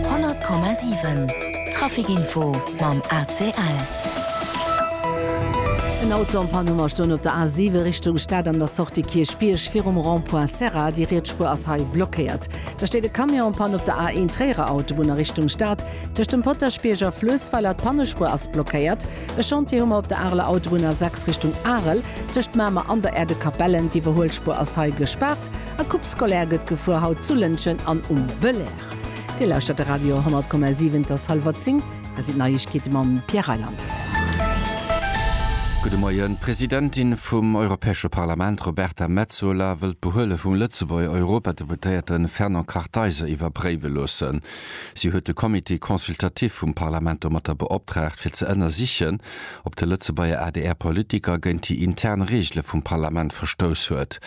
100,7 Trafic Info mam ACL. En Auto am Panne mar stoen op der A 7 Richtung Stad an der Sortie Kierchbierg virum Rond-point Serra. Déi riets Spuer ass hei blockéiert. Da steet e Camion am Panne op der A 1 Tréierer Autobunn a Richtung Stad. Tëscht dem Potaschbierg a Fluessweiler d'Pannespuer ass blockéiert. E Chantier hu mer op der Areler Autobunn A 6 Richtung Arel tëscht Mamer an der Äerdekapellen. D'Iwwerhuelspuer ass hei gespaart. A Coupe scolaire gëtt gefuer, haut zu Lëntgen an um Belair. Dir lauschtert de Radio 10,7, et ass hallwer 10, hei sinn d'Neiegkeete mam Pierre Reyland. Gudde Moien. D'Presidentin vum Europäesche Parlament Roberta Metsola wëll d'Behuele vum Lëtzebuerger Europadeputéierte Fernand Kartheiser iwwerpréiwe loossen. Si huet de Comité consultatif vum Parlament domatter beoptraagt, fir ze ënnersichen, ob de Lëtzebuerger ADR-Politiker géint déi intern Reegele vum Parlament verstouss huet.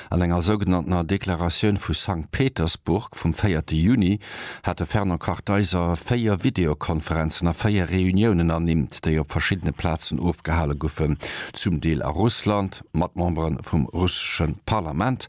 An enger sougenanntener Deklaratioun vu Sankt Petersburg vum véierte Juni hat de Fernand Kartheiser véier Videokonferenzen a véier Reuniounen ernimmt, déi op verschiddene Plazen ofgehale goufen, zum Deel a Russland, mat Membere vum russesche Parlament.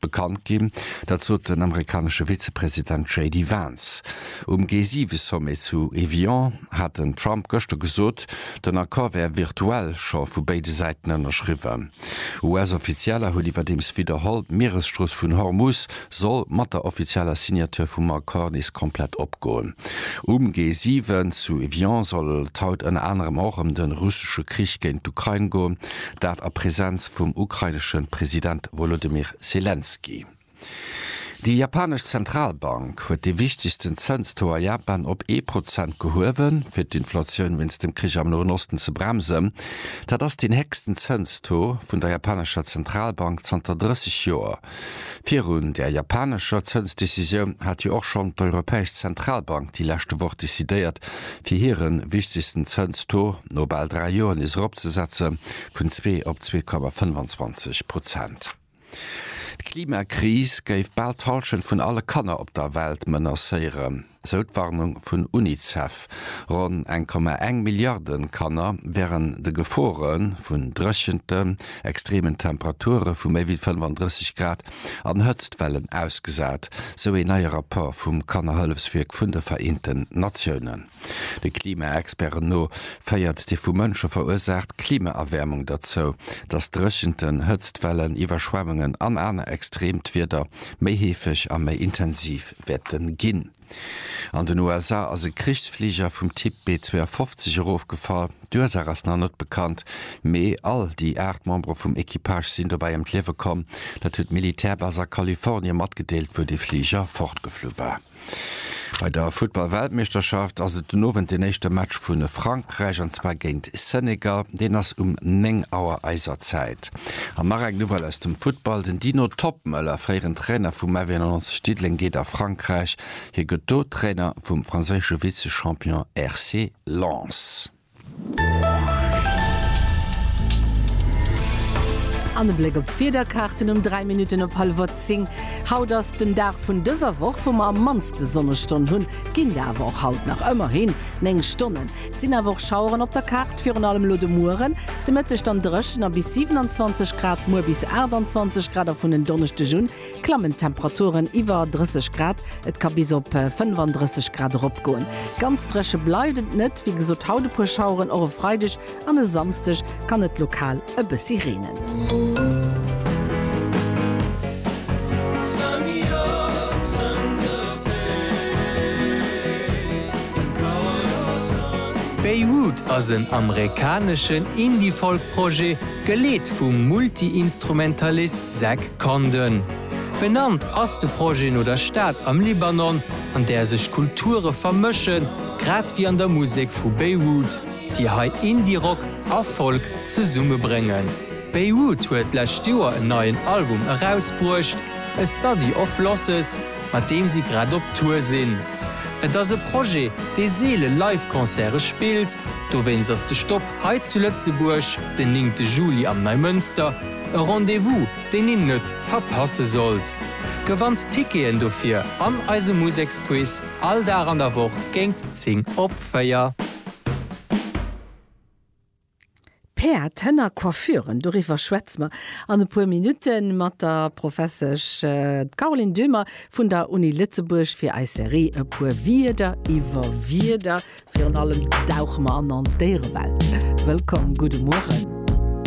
bekannt ginn. Dat sot den amerikanesche Vizepresident JD Vance. Um G7-Sommet zu Evian hat den Trump gëschter gesot, den Accord wär virtuell scho vu béide Säiten ënnerschriwwen. US-Offizieller hunn iwwerdeems widderholl, d'Mieresstrooss vun Hormuz soll mat der offizieller Signature vum Accord nees komplett opgoen. Um G7 zu Evian soll et haut ënner anerem och ëm de russesche Krich géint d'Ukrain goen, dat a Presenz vum ukrainesche President. Wolodymyr Selenskyj. Déi japanesch Zentralbank huet dee wichtegsten Zënstaux a Japan op ee Prozent gehuewen, fir d'Inflatioun wéinst dem Krich am Noen Osten ze bremsen. Dat ass deen héchsten Zënstaux vun der japanescher Zentralbank zanter 30 Joer. Virun där japanescher Zënsdecisioun hat jo och schonn d'Europäesch Zentralbank déi leschte Woch decidéiert, fir hire wichtegsten Zënstaux no bal dräi Joer nees eropzesetzen, vun zwee op zwee Komma 25 Prozent. D'Klimakris géif bal d'Hallschent vun alle Kanner op der Welt menacéieren, sou d'Warnung vun Unicef. Ronn eng Komma eng Milliarde Kanner wären de Gefore vun Dréchenten, extremen Temperature vu méi wéi 35 Grad an Hëtztwellen ausgesat, sou een neie Rapport vum Kannerhëllefswierk vun de Vereenten Natiounen. De Klimaexperten no féiert déi vu Mënsche verursaacht Klimaerwäermung derzou, datt Dréchenten, Hëtztwellen, Iwwerschwemmungen an aner extreemt Wieder méi heefeg a méi intensiv wäerte ginn. An den USA ass e Krichsfliger vum Typ B-52 erofgefall. D'Ursaach ass nach net bekannt, mee all déi aacht Membere vum Equipage sinn dobäi ëm d'Liewe komm. Dat huet d'Militärbas a Kalifornie matgedeelt, wou de Fliger fortgeflu war. Bei der Futtball-Weltmeeschterschaft ass et den Owend den éischte Match vu Frankräich, an zwar géint Senegal. Deen ass um 9 Auer eiser Zäit. An nach eng Nouvelle aus dem Futtball, Den Dino Toppmöller, fréieren Trainer vum FV 91 Diddeleng, geet a Frankräich. Hie gëtt do Trainer vum franséische Vize-Champion RC Lens. An e Bléck op d'Wiederkaarten um 3 Minutten op hallwert 10. Haut ass den Dag vun dëser Woch, wou mer am mannste Sonnestonn hunn. Ginn der awer och haut nach, ëmmerhin 9 Stonnen. Et sinn awer och Schaueren op der Kaart, virun allem elo de Mueren. De Mëtteg dann dréchen a bis 27 Grad, muer bis 28 Grad a vun en Donneschdeg un klammen d'Temperaturen iwwer 30 Grad, et ka bis op 35 Grad eropgoen. Ganz dréche bleift et net, wéi gesot haut e puer Schaueren, och e Freideg an e Samsdeg kann et lokal e bëssi reenen. Beirut ass en amerikaneschen Indie-Folk-Projet. Geleet vum Multiinstrumentalist Zach Condon. Benannt ass de Projet no der Stad am Libanon, an där sech Kulture vermëschen, grad wéi an der Musek vu Beirut, déi hei Indie-Rock a Folk zesummebréngen. Beirut huet d'lescht Joer en neien Album erausbruecht, A Study of Losses, mat deem si grad op Tour sinn. Et ass e Projet, dee seele Live-Concerte spillt, dowéinst ass de Stopp Hei zu Lëtzebuerg den néngte Juli am Neimënster, e Rendez-vous deen een net verpasse sollt. Gewannt Ticketen dofir an eise Museksquiz all Dag an der Woch géint 10 op 4. Päerd, Hënner, Coiffuren, doriwwer schwätze mer an e puer Minutte mat der Professesch Caroline Döhmer. Vun der Uni Lëtzebuerg fir eis Serie E puer Wierder iwwer Wierder. Virun allem dauche mer an an d'Déierewelt. Wëllkomm, gudde Mueren.